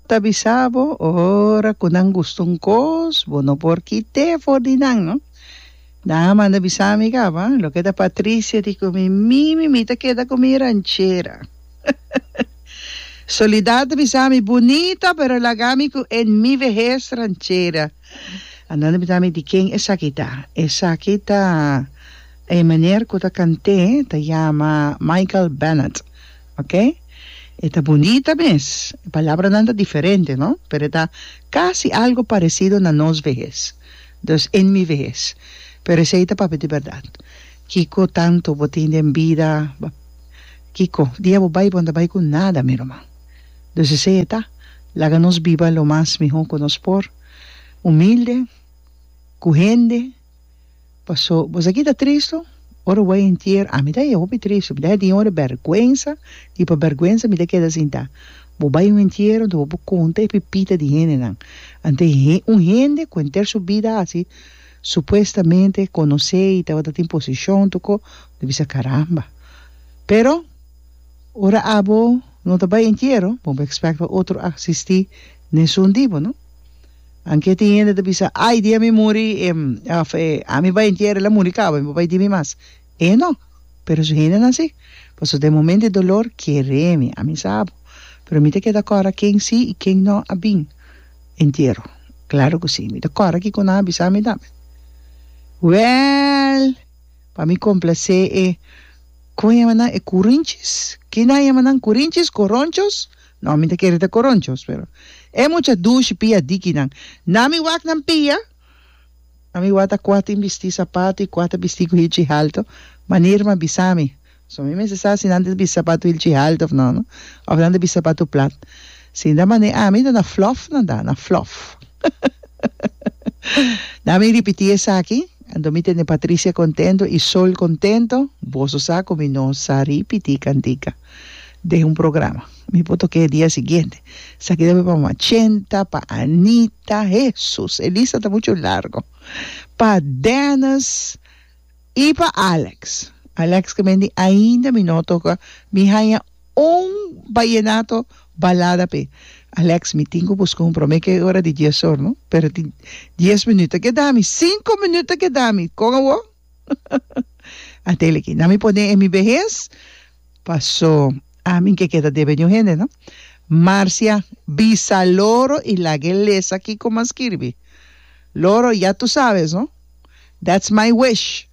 Ta bisa bo ora cu nan gusta un cos, bo no por kit'é for di nan, no. Nan a manda bisa mi caba, loke ta Patricia di cu mi, mi mimi ta keda cu mi ranchera. Soledad ta bisa mi, Bunita, pero laga mi cu en mi vehez ranchera. A nan a pregunta mi, di ken esaki ta? Esaki ta e meneer cu ta cant'é, ta yama Michael Bennett. Ok. E ta bunita mes. E palabranan ta diferente, no? Pero e ta casi algo parecido na nos vehes. Dus, en mi vehes. Pero esey ta papia di berdad. Kico tanto bo tin den bida? Bo, kico? Dia bo bay, bo no ta bay cu nada, mi ruman. Dus esey e ta. Laga nos biba lo mas miho cu nos por. Humilde, cu hende. Paso bos aki ta tristu? Ora bo a entier ami ta e hopi tristu, mi ta tin ora berguensa y pa berguensa mi ta keda sinta. Bo bai un entiero enta bo por conta e pipita di hendenan. Ante he un hende cu enter su bida haci supuestamente conoce y tabata tin posicion toco mi bisa caramba. Pero ora abo no ta bai entiero bo mi expect pa otro a asisti nesun tipo no. Anke tin hende ta bisa, Ai dia mi muri, e, òf, e, ami bai entiera, el a muri kaba, mi no bai di mi mas. E no. Pero su hendenan sí. Pasobra den e momento di dolor, kere mi, ami sa abo. Pero mi ta keda kòrda ken sí i ken no a bin entiero. Klaro ku sí. Mi ta kòrda kiko ku nan a bisa mi tambe. Wèl, pa mi komplasé e, kòmo e yama nan, e kurinchis, kinan e yama nan, kurinchis, koronchos? No, mi ta kere ta koronchos, pero e mucha dushi pia dikinan. Na mi wak nan pia, na mi wak ta kua tin bisti sapatu i kua ta bisti ku hilchi haltu, manera mi a bisa mi. So mi mester sa si nan ta bisti sapatu hilchi haltu of no, no, of nan ta bisti sapatu plat. Si nan mane ami, na flof nan ta, na flof. Na mi ripiti esaki, anto mi tene Patricia kontento i Sol kontento, boso sa ku mi no sa ripiti kantika. den un programa mi por toca e dia siguiente sa keda mi pa mama Chenta pa Anita Hesus e lista ta mucho largo pa Dennis y pa Alex Alex ke menti ainda mi no toca mi haya un vallenato balada p'e Alex mi tin cu busca un prome ke ora di dies or no pero tin dies minuut ta keda mi cinco minuut ta keda mi con awor. a tele ki na mi por den e mi behes paso a mi ke keda debe di un hende no Marcia bisa loro y laga e lesa kiko mas skirbi loro ya tu sabes no that's my wish.